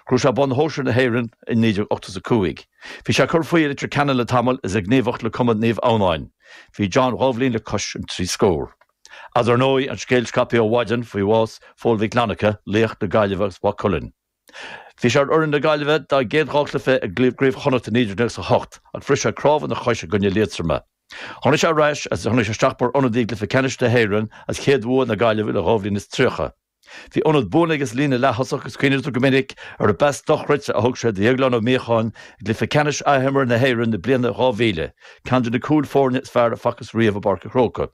Ghnóthaigh sé bonn shóisir na hÉireann i 1985. Bhí sé ag cur faoi i Leitir Ceanainn le tamall is ag gníomhaíocht le Cumann Naomh Adhamhnáin. Bhí John dhá bhliain le cois an trí scór. Ach dar ndóigh an scéal scaipthe ó mhaidin faoi bhás Phóil Mhic Fhlannchadha, laoch na Gaillimhe agus Mhaigh Cuilinn. Bhí sé ar fhoireann na Gaillimhe dá gcéad dhá chluiche i gCraobh Chonnacht i 1998 ach bhris sé cnámh ina chois i gcoinne Liatroma. Tháinig sé ar ais agus tháinig sé isteach mar ionadaí i gCluiche Ceannais na hÉireann as chéad bhua na Gaillimhe le dhá bhliain is tríocha. Bhí ionad buan aige sa líne leath-thosach agus cuimhnítear go minic ar an bpas dochreidte a thug sé do Dhéaglán Ó Míocháin i gcluiche ceannais athimeartha na hÉireann na bliana 2000, ceann de na cúil foirne is fearr a facthas riamh i bPáirc a' Chróca.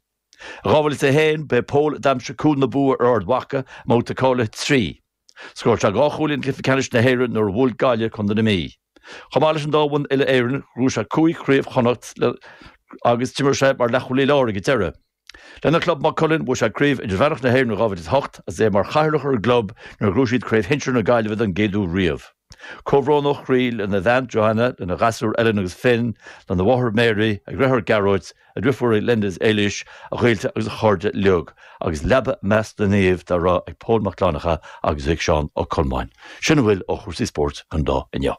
I 2001 ba é Pól a d'aimsigh cúl na bua ar Ard Mhaca i mbabhta cáilithe trí. Scór sé dhá chúilín i gCluiche Ceannais na hÉireann nuair a bhuail Gaillimh contae na Mí. Chomh maith leis an dá bhonn uile-Éireann, ghnóthaigh sé cúig Chraobh Chonnacht agus d'imir sé mar leathchúlaí láir ag an deireadh. Lena chlub Maigh Cuilinn bhuaigh sé Craobh Idirmheánach na hÉireann in 2008 agus é mar chathaoirleach ar an gclub nuair a ghnóthaigh siad Craobh Shinsir na Gaillimhe don gcéad uair riamh. Comhbhrón ó chroí lena bhean Johanna, lena ghasúir Ellen agus Finn, lena mháthair Mary, a dheartháir Gearóid, a dhriofúirí Linda is Éilís, a ghaolta agus a chairde uilig, agus leaba i measc na naomh go raibh ag Pól Mac Fhlannchadha agus ag Seán Ó Colmáin. Sin a bhfuil ó chúrsaí spóirt don lá inniu.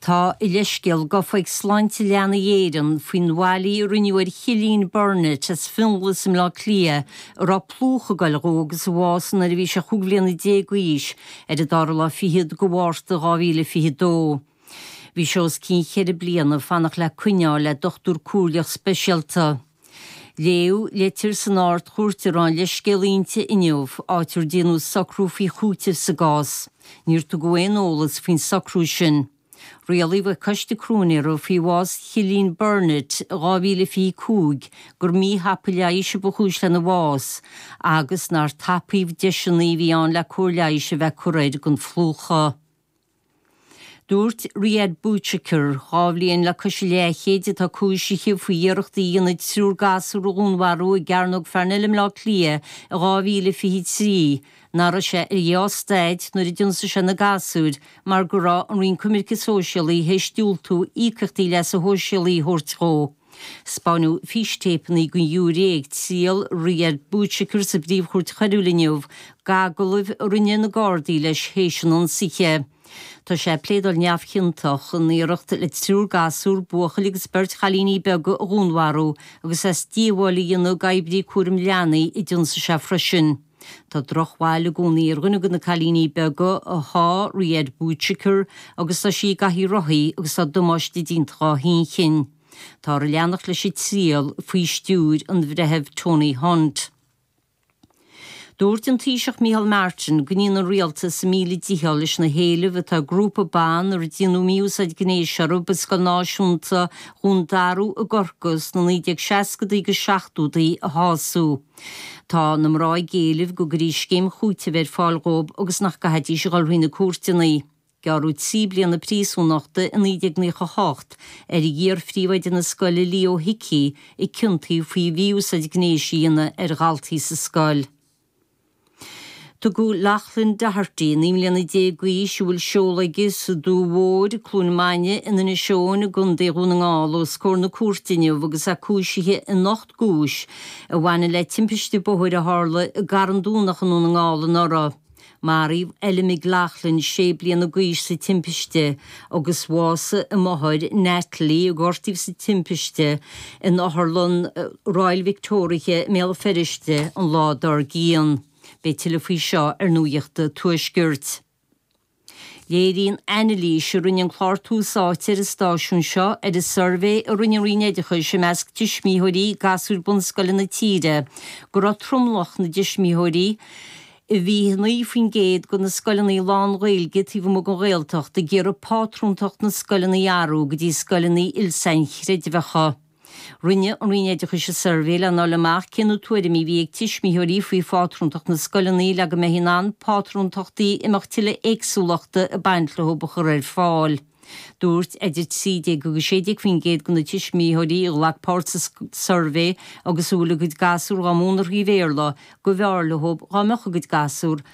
Tá a leithscéal gofa ag Sláinte Leanaí Éireann faoin bhfaillí a rinneadh ar Chillian Burnett as Fionglas i mBleá Cliath a raibh plúchadh ag goil dhó agus a bhásaigh nuair a bhí sé chúig bhliana déag d'aois ar an dara lá fichead de Mhárta 2022. Bhí sé os cionn cheithre bliana ag fanacht le coinne a fháil le dochtúir comhairleach speisialta. Léadh litir san Ard-Chúirt a raibh an leithscéal inti inniu, áit ar déanadh socrú faoi chúiteamh sa gcás. Níor tugadh aon eolas faoin socrú sin. Rialaigh an Coiste Cróinéara faoi bhás Chillian Burnett i 2025 gur míthapa leighis a ba chúis lena bhás agus nár tapaíodh deiseanna a bhí ann le cóir leighis a bheith curtha air don phlúchadh. Dúirt Riad Bouchaker, dhá bhliain le cois a leathchéid, atá cúisithe faoi iarracht a dhéanamh triúr gasúr a dhúnmharú i gCearnóg Pharnell i mBleá Cliath i 2023, nach raibh sé ar dhea-staid nuair a d'ionsaigh sé na gasúir mar go raibh an Roinn Coimirce Sóisialaí tar éis diúltú íocaíochtaí leasa shóisialaigh a thabhairt dhó. Spáineadh fístéipeanna don ghiúiré ag triail Riad Bouchaker sa bPríomhchúirt Choiriúil inniu, d'agallaimh a rinne na Gardaí leis théis an ionsaithe. Tá sé ag pléadáil neamhchiontach in iarracht le triúr gasúr, buachaill agus beirt chailíní beaga, a dhúnmharú agus as díobháil a dhéanamh d'oibrí cúraim leanaí a d'ionsaigh sé freisin. Tá drochbhail i gcónaí ar dhuine de na cailíní beaga a sháigh Riad Bouchaker, agus tá sí i gcathaoir rothaí agus tá damáiste déanta dhá hinchinn. Táthar ag leanacht leis an triail faoi stiúir an Bhreithimh Tony Hunt. Dúirt an Taoiseach Micheál Martin go ndéanann an Rialtas a míle dícheall leis na héilimh atá ag grúpa ban ar déanadh mí-úsáid gnéis orthu i Scoil Náisiúnta Dhún Darú i gCorcaigh sna 1960idí agus 70idí a shású. Tá na mná ag éileamh go gcuirfí scéim chúitimh ar fáil dhóib agus nach gcaithfidís a dhul thrí na cúirteanna. Gearradh trí bliana príosúnachta i 1998 ar iar-phríomhoide na scoile Leo Hickey a ciontaíodh faoi mhí-úsáid gnéis a dhéanamh ar dhaltaí sa scoil. Tugadh Lachlan Doherty, 19 mbliana d'aois, a bhfuil seoladh aige sa Dumhaigh Mhór, Cluain Maine, in Inis Eoghain i gContae Dhún na nGall os comhair na cúirte inniu agus é cúisithe in ocht gcúis a bhaineann le timpiste bóthair a tharla i gCarn Domhnach i nDún na nGall anuraidh. Maraíodh Ella McLaughlin, 6 bliana d'aois, sa timpiste agus bhásaigh a máthair Natalie a gortaíodh sa timpiste in Otharlann Royal Victoria i mBéal Feirste an lá dár gcionn. Beidh tuilleadh faoi seo ar Nuacht an Tuaiscirt. Léiríonn anailís a rinne an clár Tús Áite ar an stáisiún seo ar an suirbhé a rinne an Roinn Oideachais i measc tuismitheoirí gasúr bunscoile na tíre go raibh tromlach na dtuismitheoirí I 29% de na scoileanna lán-Ghaeilge taobh amuigh den Ghaeltacht ag iarraidh pátrúntacht na scoileanna a athrú go dtí scoileanna il-sainchreidmheacha. Rinne an Roinn Oideachais an suirbhé lena fháil amach cé na tuairimí a bhí ag tuismitheoirí faoi phátrúntacht na scoileanna le go mbeifí in ann pátrúntachtaí a mbeadh tuilleadh éagsúlachta ag baint leo a chur ar fáil. Dúirt idir 13 agus 16 faoin gcéad de na tuismitheoirí a ghlac páirt sa suirbhé agus a bhfuil a gcuid gasúr dhá múineadh trí Bhéarla gurbh fhearr leo dhá mbeadh a gcuid gasúr